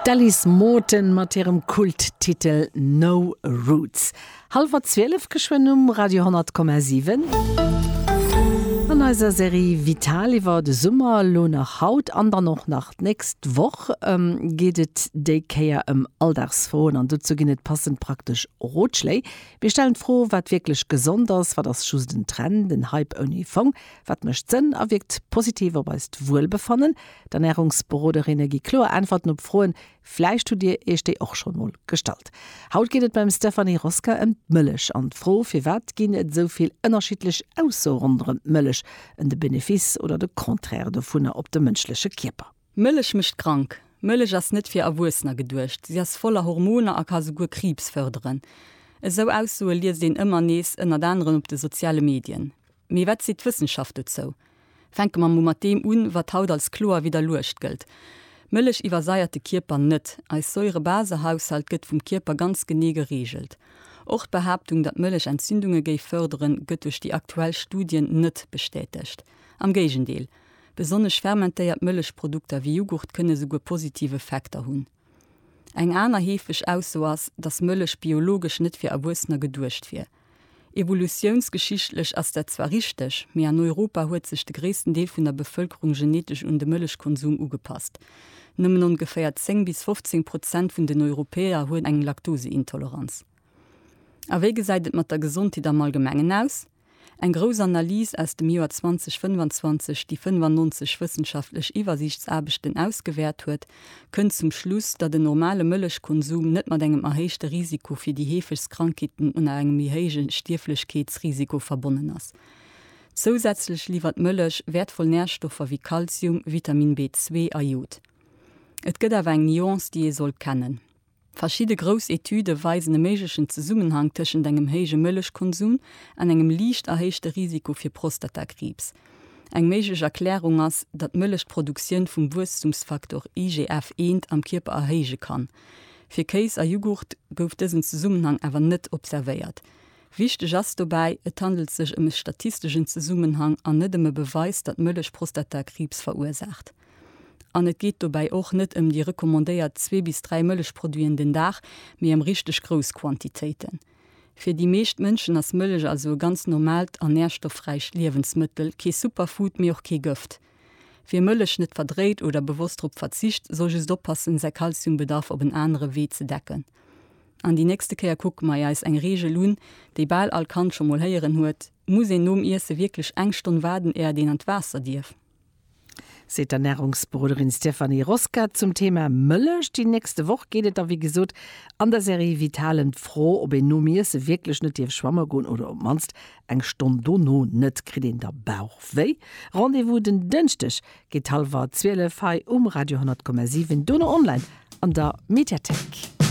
D'Alice Morton mat hirem Kulttitel No Roots. Hallwer 12 geschwënn um Radio 10,7. An eiser Serie Vital iwwer de Summer, lo nach haut an dann och nach d'nächst Woch, geet et déi Kéier ëm Alldagsfroen an dozou ginn et passend praktesch Rotschléi. Mir stellen d'Fro, wat wierklech gesond ass, wat ass just en Trend, en Hype ouni Fong? Wat mécht Sënn a wierkt positiv op eist Wuelbefannen? D'Ernärungsberoderinne gi kloer Äntwerten op Froen, vläicht hutt Dir Iech déi och schonn emol gestallt. Haut geet et beim Stéphanie Rosca ëm d'Mëllech an d'Fro, firwat ginn et esou vill ënnerschiddlech Aussoe ronderëm d'Mëllech, en de Benefice oder de Contraire dovunner op de mënschleche Kierper. Mëllech mécht krank. Mëllech ass net fir Erwuessener geduecht. Si ass voller Hormoner a ka souguer Kriibs fërderen. Esou Aussoe liest een ëmmer nees, ënnert anerem op de soziale Medien. Mee wat seet d'Wëssenschaft dozou? Fänke mer mol mat deem un, wat haut als kloer widderluecht gëllt, Mëllech iwwersaiert de Kierper net. Eis Säurebasehaushalt gëtt vum Kierper ganz genee gereegelt. Och d'Behaaptung, datt Mëllech Entzündunge géif fërderen, gëtt duerch déi aktuell Studien net bestätegt. Am Géigendeel, besonnesch fermentéiert Mëllechprodukter wéi Jughurt kënne souguer positiv Effekter hunn. Eng aner heefeg Ausso ass, datt Mëllech biologesch net fir Erwuessener geduecht wier. Evolutiounsgeschichtlech ass dat zwar richteg, mee an Europa huet sech de gréissten Deel vun der Bevëlkerung genetesch un de Mëllechkonsum ugepasst. Nëmmen ongeféier 10 bis 15 Prozent vun den Europäer huet eng Laktoseintoleranz. A wéi gesäit et mat der Gesondheet am Allgemengen aus? Eng grouss Analys aus dem Joer 2025, déi 95 wëssenschaftlech Iwwersiichtsaarbechten ausgewäert huet, kënnt zum Schluss, datt en normale Mëllechkonsum net mat engem erhéichte Risiko fir déi heefegst Krankheeten un a engem méi héije Stierflechkeetsrisiko verbonnen ass. Zousätzlech liwwert d'Mëllech wäertvoll Närstoffer wéi Kalzium, Vitamin B2 a Jod. Et gëtt awer eng Nuance, déi ee sollt kennen. Verschidde grouss Etüde weisen e méiglechen Zesummenhang tëschent engem héije Mëllechkonsum an engem liicht erhéichte Risiko fir Prostatakriibs. Eng méiglech Erklärung ass, datt d'Mëllech d'Produktioun vum Wuesstumsfaktor IGF eent am Kierper erhéije kann. Fir Kéis a Jughurt gouf dësen Zesummenhang awer net observéiert. Wichteg ass dobäi, Et handelt sech ëm e statisteschen Zesummenhang an net ëm e Beweis, datt Mëllech Prostatakriibs verursaacht. An et geet dobäi och net ëm déi recommandéiert zwee bis dräi Mëllechproduiten den Dag, mee ëm richteg grouss Quantitéiten. Fir déi meescht Mënschen ass Mëllech also e ganz normaalt an nährstoffräicht Liewensmëttel, kee Superfood, mee och kee Gëft. Wie Mëllech net verdréit oder bewosst drop verzicht, soll just oppassen, säi Kalziumbedarf op en anere Wee ze decken. An déi nächste Kéier kucke mei eis eng Reegel un, déi bal all Kand scho mol héieren huet, Muss een nom Iesse wierklech eng Stonn waarden, éiert een an d'Waasser dierf? seet d'Ernärungsberoderin Stéphanie Rosca zum Thema Mëllech. Déi nächste Woch geet et da wéi gesot an der Serie Vital ëm d'Fro, ob een nom Iesse wierklech net dierf schwamme goen oder op d'mannst eng Stonn dono net. Kritt een da Bauchwéi? Rendez-vous den Dënschdeg géint hallwer 12 hei um Radio 100,7, dono online an der Mediathéik.